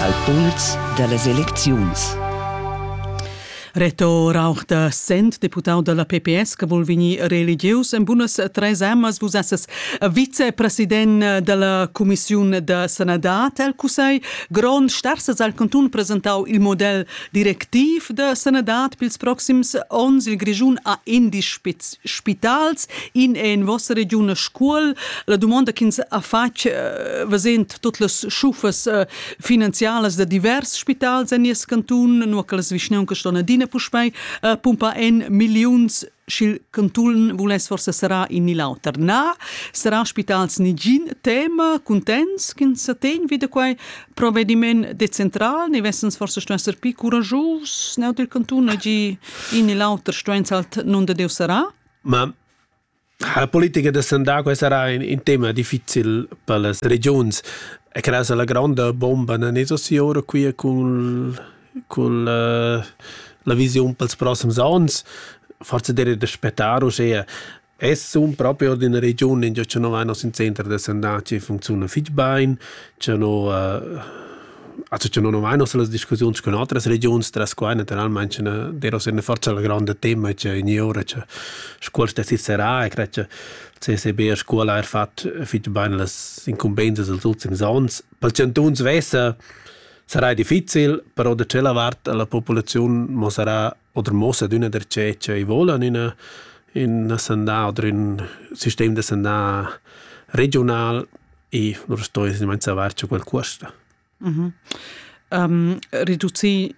al puls da las elecziuns. Reto Rauch da Sent, deputau dalla PPS, che vul vegnir religieus en bunas tres amas, vus esses vicepresident dalla Commissiun da sanadad el Cussegl grond, starsas al cantun presentau il model Directiv da sanadad pils proxims onns il Grischun ha indisch spitals in è in vossa regiun a scuol. La domanda ch'ins ha fatg vesent tut las schufas finanzialas da divers spitals en nies cantun, nur che las vischnauncas ston adina puspei pumpar en milliuns sch'il cantun vuless forsa serà in ni l'auter. Na, serà spitals nigin tema, cuntents ch'ins sa tegn vi da quai provvediment decentral, ne vessens forsa stuain esser pli curajus neu dil cantun, gi in ni l'auter stuain halt non da Deus serà? Ma la politica da Sandà sarà in, in tema difficil per las regions e credo la gronda bomba na ne so si ora qui cun cun la, la visiun pels prossems ons, forse direi da spettar uschea. Essum propi ord üna regiun ingio cha no vain nos ün center da sandà chi funcziuna fich bain, cha no, also cha no nu vain hoz las discussiuns cun otras regiuns tras quai natüralmaing cha d'eira sia forza la granda tema cha ogni ura cha Scuol stess serrà e cret cha CSB a Scuol ha eir fat fich bain las incumbenzas dels ultims ons. Pel chantun svessa Sarai difficil, però da tschella vart la populaziun mo sarà oder mossa d'üna dercè che i vola in üna in sandà oder ün sistem da sandà regiunal e non sto esattamente savar che quel cuosta. Mh-mh. Um, reducir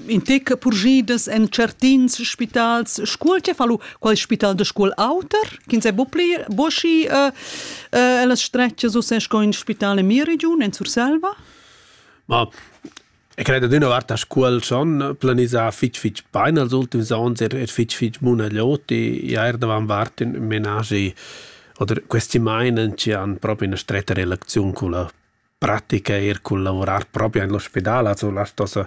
In tec purgidas en certins spitals scuol che fa lu qual spital de scuol auter ch'ins è bopli boschi uh, uh, las stretches u se sco in spital in mia region en Surselva ma E credo d'una vart a scuol son planisà fitg fitg bain als ultims onns, er, er fitg fitg munaglioti, ja er davan vart in menagi oder questi meinen ci han proprio una stretta relazione con la pratica eir cun lavurar propi in l'ospidal, also las tos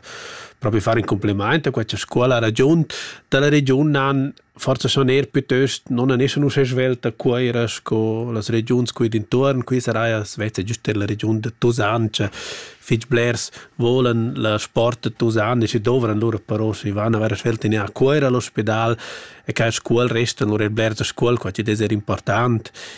propi far in complimaint a questa scuola. Ragiun da la regiun nan forsa schon eir pütöst non han eschan uschè svelta Cuoira sco las regiuns qui d'intuorn. Qui saraja sveza giüst er la regiun da Tusan, che fich blers volan la sport da Tusan e si dovran lura però si van a vera svelta in a Cuoira all'ospidal e che scuol restan lura er blers da scuol, qua chi'd es er important.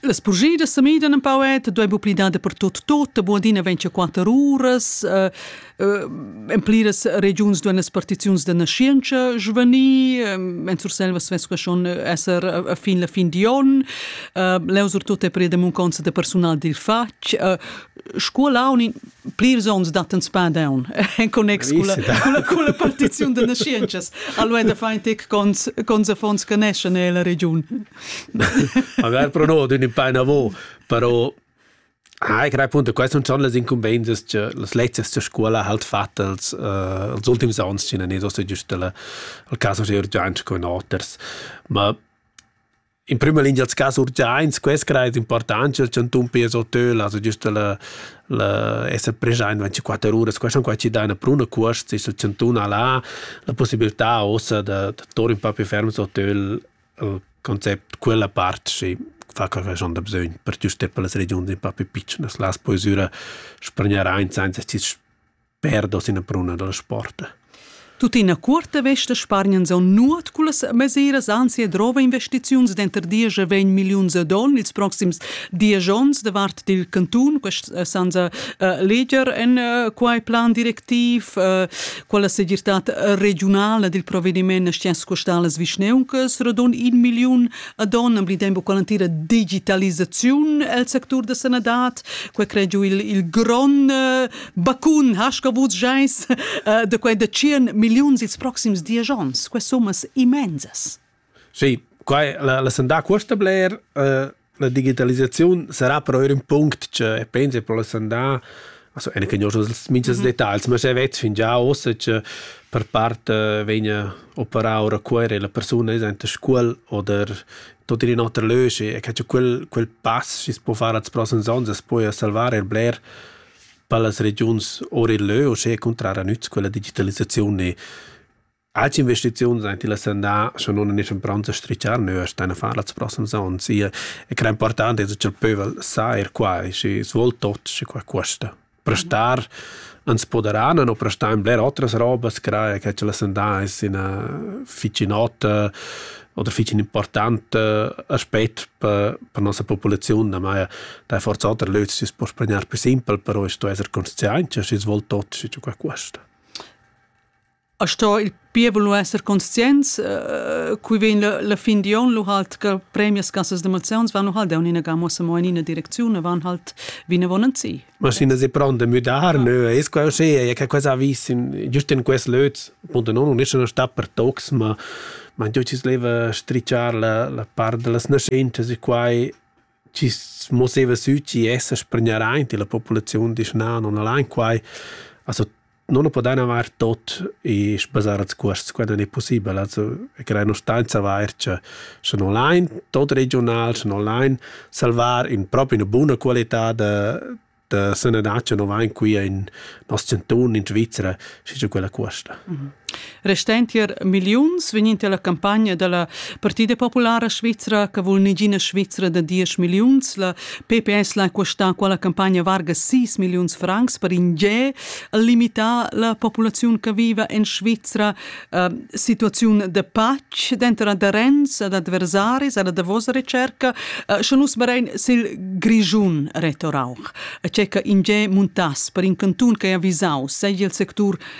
Las purgidas se midan un pau et doi bu pli dada per tot tot, bu adina vegn che quater uras, uh, uh, en pliras regions duan las partiziuns da nascienza svanir, en Surselva svess que schon esser a fin la fin di on, uh, leu surtut è preda munconza de personal dil fatg, uh, scuola un plirs onns dattan spadaun en connex culla, culla, culla partiziun da nascientschas allora da fain tec cons cons affons che neschan nella regiun magari però no d'ün paina vo però Ah, ich credo appunto, queste sono le incumbenze che le lezioni della scuola halt fatte als, uh, als ultimi anni, ce n'è giusto giusto il caso di urgenza con oters. Ma In prüma lingia als cas urgiaints, quest crai es important cha'l chantun pia sottöl, also giüst la la esser preschaint 24 uras. Quai sun quai chi daina pruna cuosts, il chantun al ha la pussibiltà uossa da da tour ün pa più ferm sottöl il concept quella part chi fa quai ch'haun da bsögn per giuster per las regiuns ün pa più pitschnas. Las poesüra spargnarain sainza chi's perdos ina pruna dal sport. Tuttina cuorta vesta spargnan son nuot cullas mesiras anzi e drova investiziuns denter diesch e vegn milliuns a don ils proxims diesch onns da vart dil cantun quest eh, sanza uh, leger en uh, quai plan directiv uh, quella segirtad regionala dil provvediment scienz custalas vischneuncas radon in milliun a don am dembo qualantira digitalisaziun el sectur da sanadad quei cregiu il il gron uh, Bacun hasca vus geis uh, de quei de 100 milliuns ils proxims dies ons, que summas immensas. Sì, quai la, la sandà questa bler uh, la digitalizzazione sarà però un punto che penso per la sandà also eine kenne schon das minchas mhm. Details, ma se vet fin già ossa che per parte vegna operar ora cuore la persona is ante scuol oder tot in otra lösche e che quel quel pass si può fare als prossimi anni, poi a salvare il bler per las regiuns ora e leu, uschè cuntrara nüz quella digitalisaziun e Alch investiziuns ein til ascendà, scha non en eschan pronts a strichar neu a stein a far las prossimas ons. Ia è cra important es cha'l pövel sa er quai, schi svol tot, schi qua cuosta. Prestar ans poderan no prestar in bler otras robas, crae che ch'el ascendà es ina ficinota, oder fich ün important aspet per, per nossa populaziun, damai da forza oter löz si poss pregnar più simpel, però es sto esser conscientia, schi svol tot, schi giù qua questa. A sto il pievel nu esser conscients, uh, cui vegn la, la fin di on, lu halt che premias cassas d'emozions van nu halt da unina gamma mo in ina direcziun, van halt vina vonanzi. Maschinas è pronte a müdar, nö, es quai uschè, e che quai vis giust in quest löz. Punto non, non es uno sta per tocs, ma ma giò ci sleva stricciar la la part da las naschentas e quai ci mosseva sü, ci essa spregnaraint e la populaziun disch na, non al han quai. Also non lo podan avair tot e sbasar als cuosts quando ne possibel. Also e crear una stanza vair cha scha non lain tot regional, scha non lain salvar in propi una buna qualità da da sanadad cha no vain qui in nos chantun in Svizra, schi cha quella cuosta. Restend tier milliuns vegn in la campagna dalla Partida Populara Svizra che vul negina Svizra da 10 milliuns. La PPS l'ha questa quella campagna varga 6 milliuns francs per in ge limitar la popolazione che vive in Svizra. Uh, situazione de pace dentro aderents ad adversaris ad davos ricerca. Uh, Schon nus berein sil Grischun retorauch. C'è che in ge muntas per in canton che è avvisau, segl il sector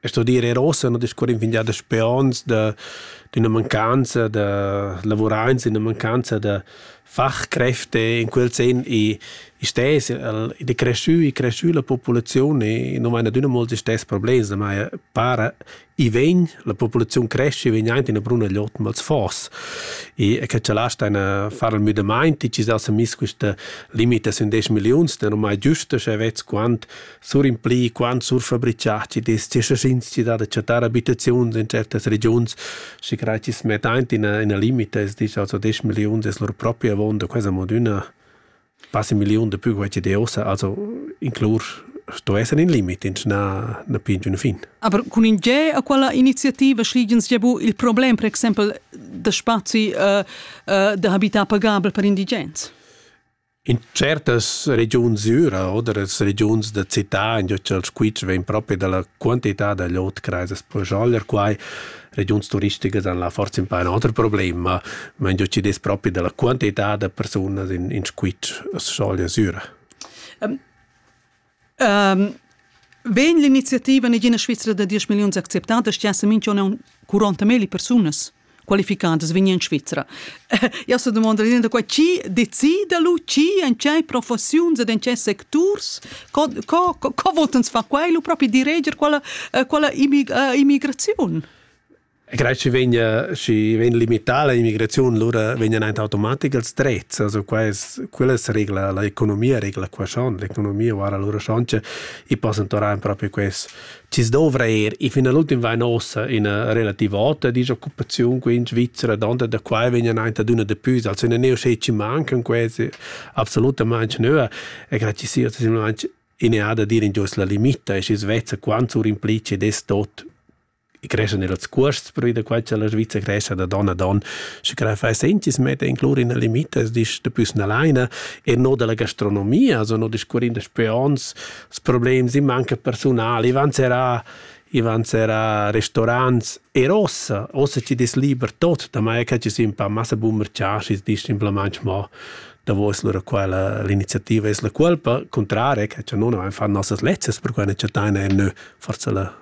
E sto dir er ossa no discurrin fin gia da speons da d'üna mancanza da lavuraints, d'üna mancanza da fachkräfte in quel sen i i stess el ed è creschü i creschü la populaziun e nu vain adüna mols istess problems, ma para i vegn, la populaziun cresce, vegn aint üna bruna glot mals fos. E che cha là staina far il müdamaint, chi s'ha miss quista limita sün 10 milliuns, da nu mai giüsta, sche vezz quant sur impli quant surfabritschà chi dess che schins da da chattar abitaziuns in certas regiuns, schi crai chi's metta aint ina ina limita, es disch also 10 milliuns es lur propria avonda, quasi mod üna quasi milliun da pü quai chi deossa, also inclur sto esser in limit, ins na, na pin giun fin. Aber cun in ge a quella iniziativa schligens già bu il problem, per exempel, da spazi uh, uh, da habitar pagabel per indigens? In tschertas regiuns düra oder las regiuns da cità, ingio cha'l squitsch vegn propi da la quantità da glot crajas per scholler quai, regiuns turisticas han là forsa impè ün oter problem, ma ma ingio chi'd es propi da la quantità da persunas in in squitsch as schoglia süra. Um, Vegn l'iniziativa negina Svizra da 10 milliuns acceptada, stiasse minch'on 40 meli persunas qualificadas vegnan in Svizra. Io sto domandare linea qua chi decida lu chi en cei professiuns ed en cei secturs co, co, co, co voltans fa quai lu propi direger quella, eh, quella immig, uh, immigraziun? Credo che vegna schi vegna limitata l'immigrazione, lura vegnan aint automatic els drets, also qua es quella regla, l'economia regla qua schon, l'economia guarda lura schon che i possan tornar proprio quels chi dovra eir, e fin all'ultim vain ossa üna relativa ota disoccupaziun qui in Svizzera, donda da qua vegnan aint ad üna depüs, also üna neu che ci mancan quasi absolutamente nöa, e credo che sia simplesmente ineada dir in gius la limita e schi svezza quant sur implice des tot e creschan er els cuosts per da quai cha la Sviza crescha da don a don, sche che fai sentis metta in clor in limitas dis da püs nalaina e no da la gastronomia, also no discuorin da spe ons, s problems in manca persunal, i van serà i van serà restaurants er ossa, ossa ci des liber tot, da mai che ci sin pa massa bummer chascis dis simplemente mo davo es lura quella l'iniziativa es la culpa, cuntrare che cha non fan nossas lezzas per quai ne chattaina e nö forsa la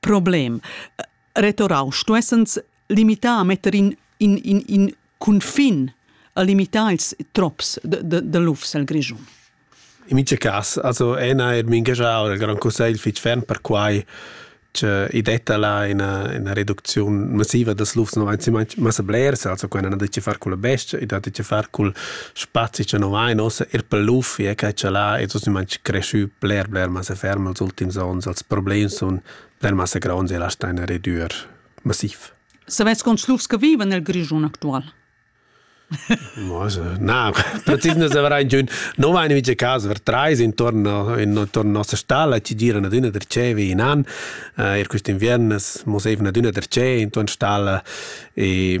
Problem. Retorau stuessens limitar a metter in, in, in, in cunfin a limitar ils trops de, de, de lufs el Grischun. In mica cas, also ena er mingagiau il Grand Consiglio fitg ferm per quai che i detta là una, una reduzione massiva des lufs no avanzi massa blers, also quella non ha de far col bestia, i da de far col spazi cha no vain uossa eir pel luffi e che cha là es ossimantsch creschü bler bler massa ferm als ultims ons. Els problems sun bler massa gronds e lastan ina redüer massiv. Savais quants lufs che vivan nel Grischun actual? Na, precis ne savrai giun. No vain mica cas, ver trais intorn, intorn nossa stalla ci giran adüna der cevi in an. Uh, er quist inviern es mos eivna adüna der ce intorn stalla e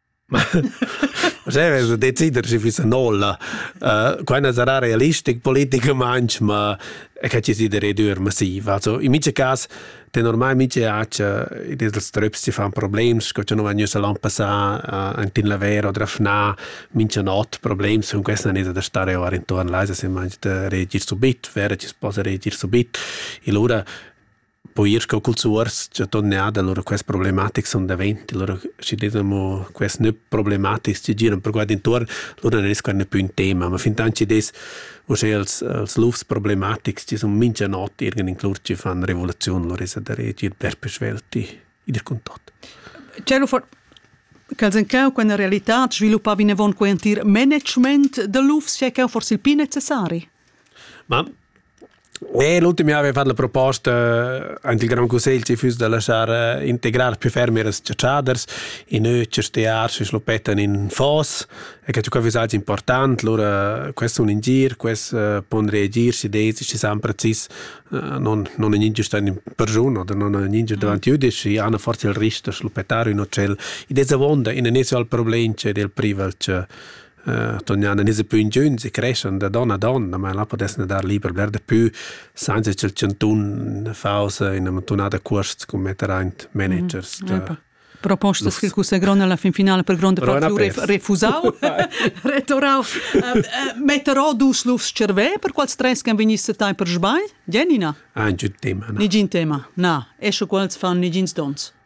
Sche decider schi füssa nolla. Quai sarà realistic politicamaing, ma che ci sidere dür massiv. Also in mice cas ten ormai mice accia ils tröps ci fan problems, sco cha nu van gnüssa l'an passà ant in laver o drafnà mincha not problems cun questa nesa da stare our intuorn l'aisa se mangi da reagir subit, vera ci s'posa reagir subit. E lura Poi ir sco culs uors, cha ton e ad, allura quest problematics sun davent, allura schi dess amo quest növ problematics chi giran per qua d'intuorn, lura non es quai gnanc pü ün tema, ma fintan chi dess uschè als als lufs problematics chi sun mincha not irgend inclus chi fan revoluziun, lura esa da reagir dasper svelt id cun tot. Tgelo for ch'els en cheu quella realità sviluppa vinavon quei entir management da lufs, sche cheu forse il pli necessari? Ma Nee, l'ultim jahr avevan la proposta ant il Grand Cussegl ci füss da laschar integrar più fermi las ciatschaders in ötschas tears chi schlupettan in foss e che tuca füss important, lura quest sun in gir, quest pon reagir schi des schi san precis non non gnir giust in persun oder non gnir giust davant jüdisch, i han forsa il rister schlupettar ün otschel. I des avonda in inizial problem c'è del privel cha Tonian nis pü ingüns e creschan da don a don, ma là pudessan dar liber bler dapü sainza cha'l chantun faus üna muntanada cuosts cun metter aint managers. Propostas che cussegrond alla fin finala per gronda part refusau, retorau, metterò dus lufs cervè per quals tres can vegniss tai per sbagl? Jenina? Ein giud tema. Nigin tema. Na, esche quals fan nigins dons.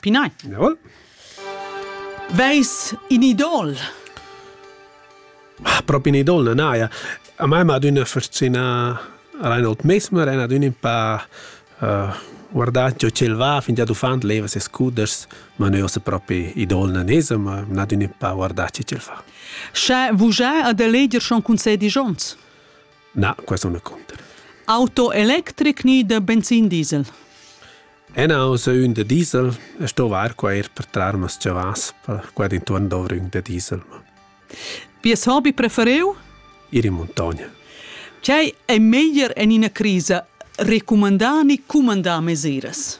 Pinai. Jawohl. Veis in idol? Ah, propi in idol non hai. A me m'ha d'una fascina Reinhold Mesmer, è d'una un pa uh, guardat jo ce va, finché du fand leva se scuders, ma noi se propi idol non esa, ma m'ha d'una un pa guardat ce fa. Sche vujai ad eleger schon concedi Jons? Na, questo non conta. Auto electric ni de benzin diesel? Enau sua ün da diesel e sto var qua eir per trar mas chavas per qua d'intuorn dovra ün da diesel. Vies hobby prefereu? Ir in muntogna. Quai è meglier en ina crisa recumandar ni cumandar mesiras?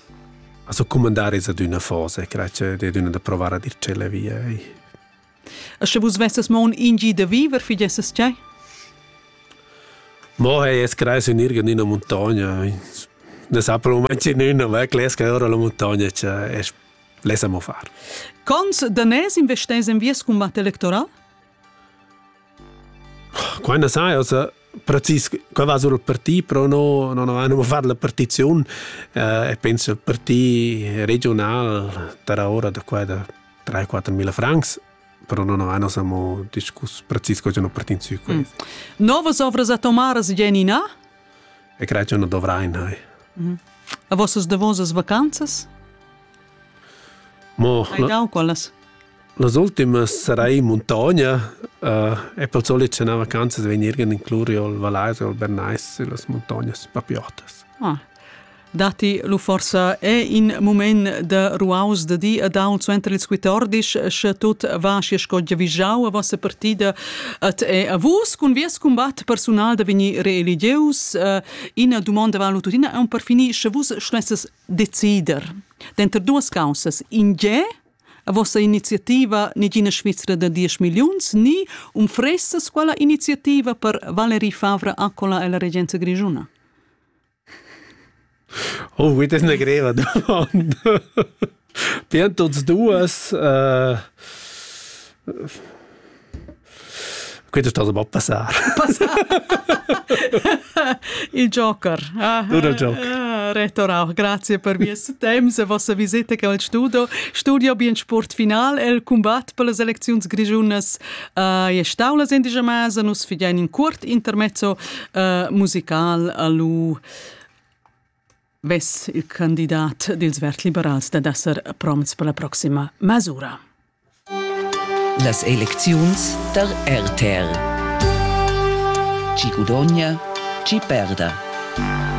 Also cumandare es ad üna fase, crei che è d'una da provare a dir celle via. E sche vus vesses mo un ingi de viver, fidesses tgei? Mo hey, es creis in irgendeiner Montagna. Das hat moment in una weg, les che ora la montagna c'è, es lesa mo far. Cons danès investès en vies combat electoral? Quando sai, also precis qua va sul parti però no non avevano far la partizione eh, e penso il parti regional tra ora da qua da 3-4 mila francs però non avevano samo discuss precis cosa non partinzio mm. Novas ovras a Tomaras Genina? E credo che non dovrain hai. Mm. A vossas davosas vacanzas? Mo, Hai no, daun quallas? Las ultimas sarei in muntogna e pel solit sche na vacanzas vegnir in incluriu al Vallais o al Bernais süllas muntognas papiotas. Ah. Datti lu forsa è in mument da ruaus da di a daun suenter ils quitordis sche tut va schi sco giavischau a vossa partida et è a vus cun vies combat personal da vegnir reeligius uh, ina domanda valu tuttina un per finir sche vus schlesses decider denter duas causas in ge A vossa iniziativa Negina Svizra da diesch milliuns ni umfressas quella iniziativa per Valerie Favre Accola e la regenza grischuna? Oh, das ist eine greve Domanda. Bien, tots duas. Äh, Quei sta ba passar. Il Joker. Ah, Dura il Joker. Ah, Retorau, grazie per vies temps e vossa visita al studio. Studio bien sport final, el combat per las elecziuns grigiunas uh, e staulas indigemas, nus fidein in curt intermezzo uh, musical a lu vess il candidat dils verd-liberals dad esser promts per la proxima mes'ura. Las elecziuns tar RTR. Chi gudogna, chi perda.